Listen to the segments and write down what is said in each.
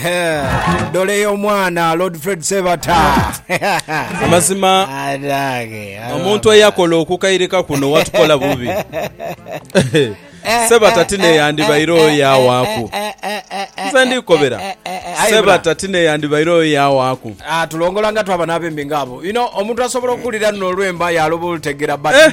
Ehe, dole y'omwana lord fred sebata amazima Adange, omuntu eyakola okukairika kuno watukola bubi sebata tineyandibaire oyo yawaaku nze ndikobera sebata tineyandibaire oyo yawaaku Ah, tulongola nga twaba n'abembi ng'abo you know, omuntu asobola okuwulira nno olwemba yaloba olutegera but Eh.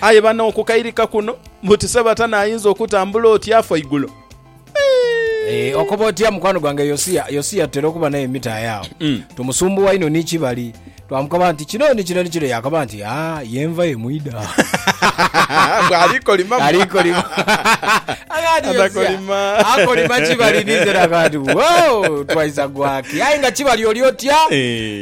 Aye bano okukairika kuno buti Sebatana ayinza okutambula oti afa igulo? Eeh okoba otya mukwano gwange Yosia Yosia tutera okuba naye mumita aye awo mm. tumusumbuwa ino ni kibali twamukaba nti kino ni kino ni kino yakaba nti aa ah, yenva emwida bwalikolima alikolima akolima akolima kibali nizera kati wow twaisa gwaki aye nga kibali oli otya eh.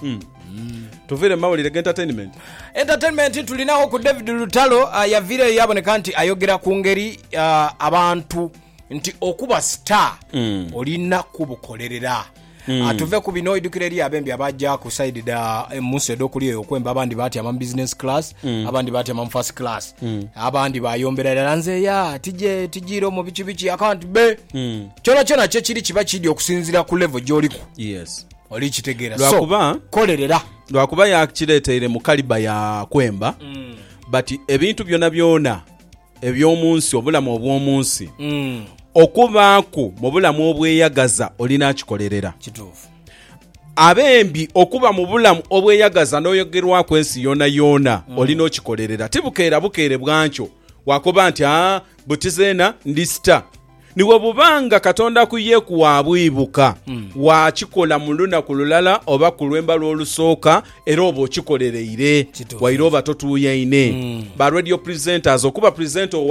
Hmm. Tuviire mu mawulire g'entertainment. Entertainment tulinawo ku David Lutalo ah, yaviireyo yaboneka nti ayogera ku ngeri ah, abantu nti okuba star hmm. olina kubukolerera Mm. Ah, tuve ku bino idukira eri abembi abaja ku side da eh, munsi edokuli eyo okwemba abandi batyama mu business class mm. abandi batyama mu first class mm. abandi bayombera dala nze ya tije tijiro mu biki biki akanti be mm. kyona kyona kyekiri kiba kidi okusinzira ku level gyoliku yes Oli kitegeera. Lwa So, kuba, kolerera. lwa kuba yakireeteire mu kaliba ya kwemba, but ebintu byonabyona eby'omu nsi, obulamu obw'omu nsi, Mm. okubaaku mu bulamu obweyagaza oli n'akikolerera. Kituufu. Abembi okuba mu bulamu obweyagaza n'oyogerwaku ensi yoonayoona oli n'okikolerera. Ti bukeera bukeere bwankyo wakoba nti, aa, buti zeena ndisita. Ni bwe buba nga Katonda ku ye kwabwibuka, hmm. waakikola mu lunaku lulala oba ku lw'embalu olusooka, era oba okikolereire waire oba totuuyaine. Hmm. Ba radio presenters okuba presenter owa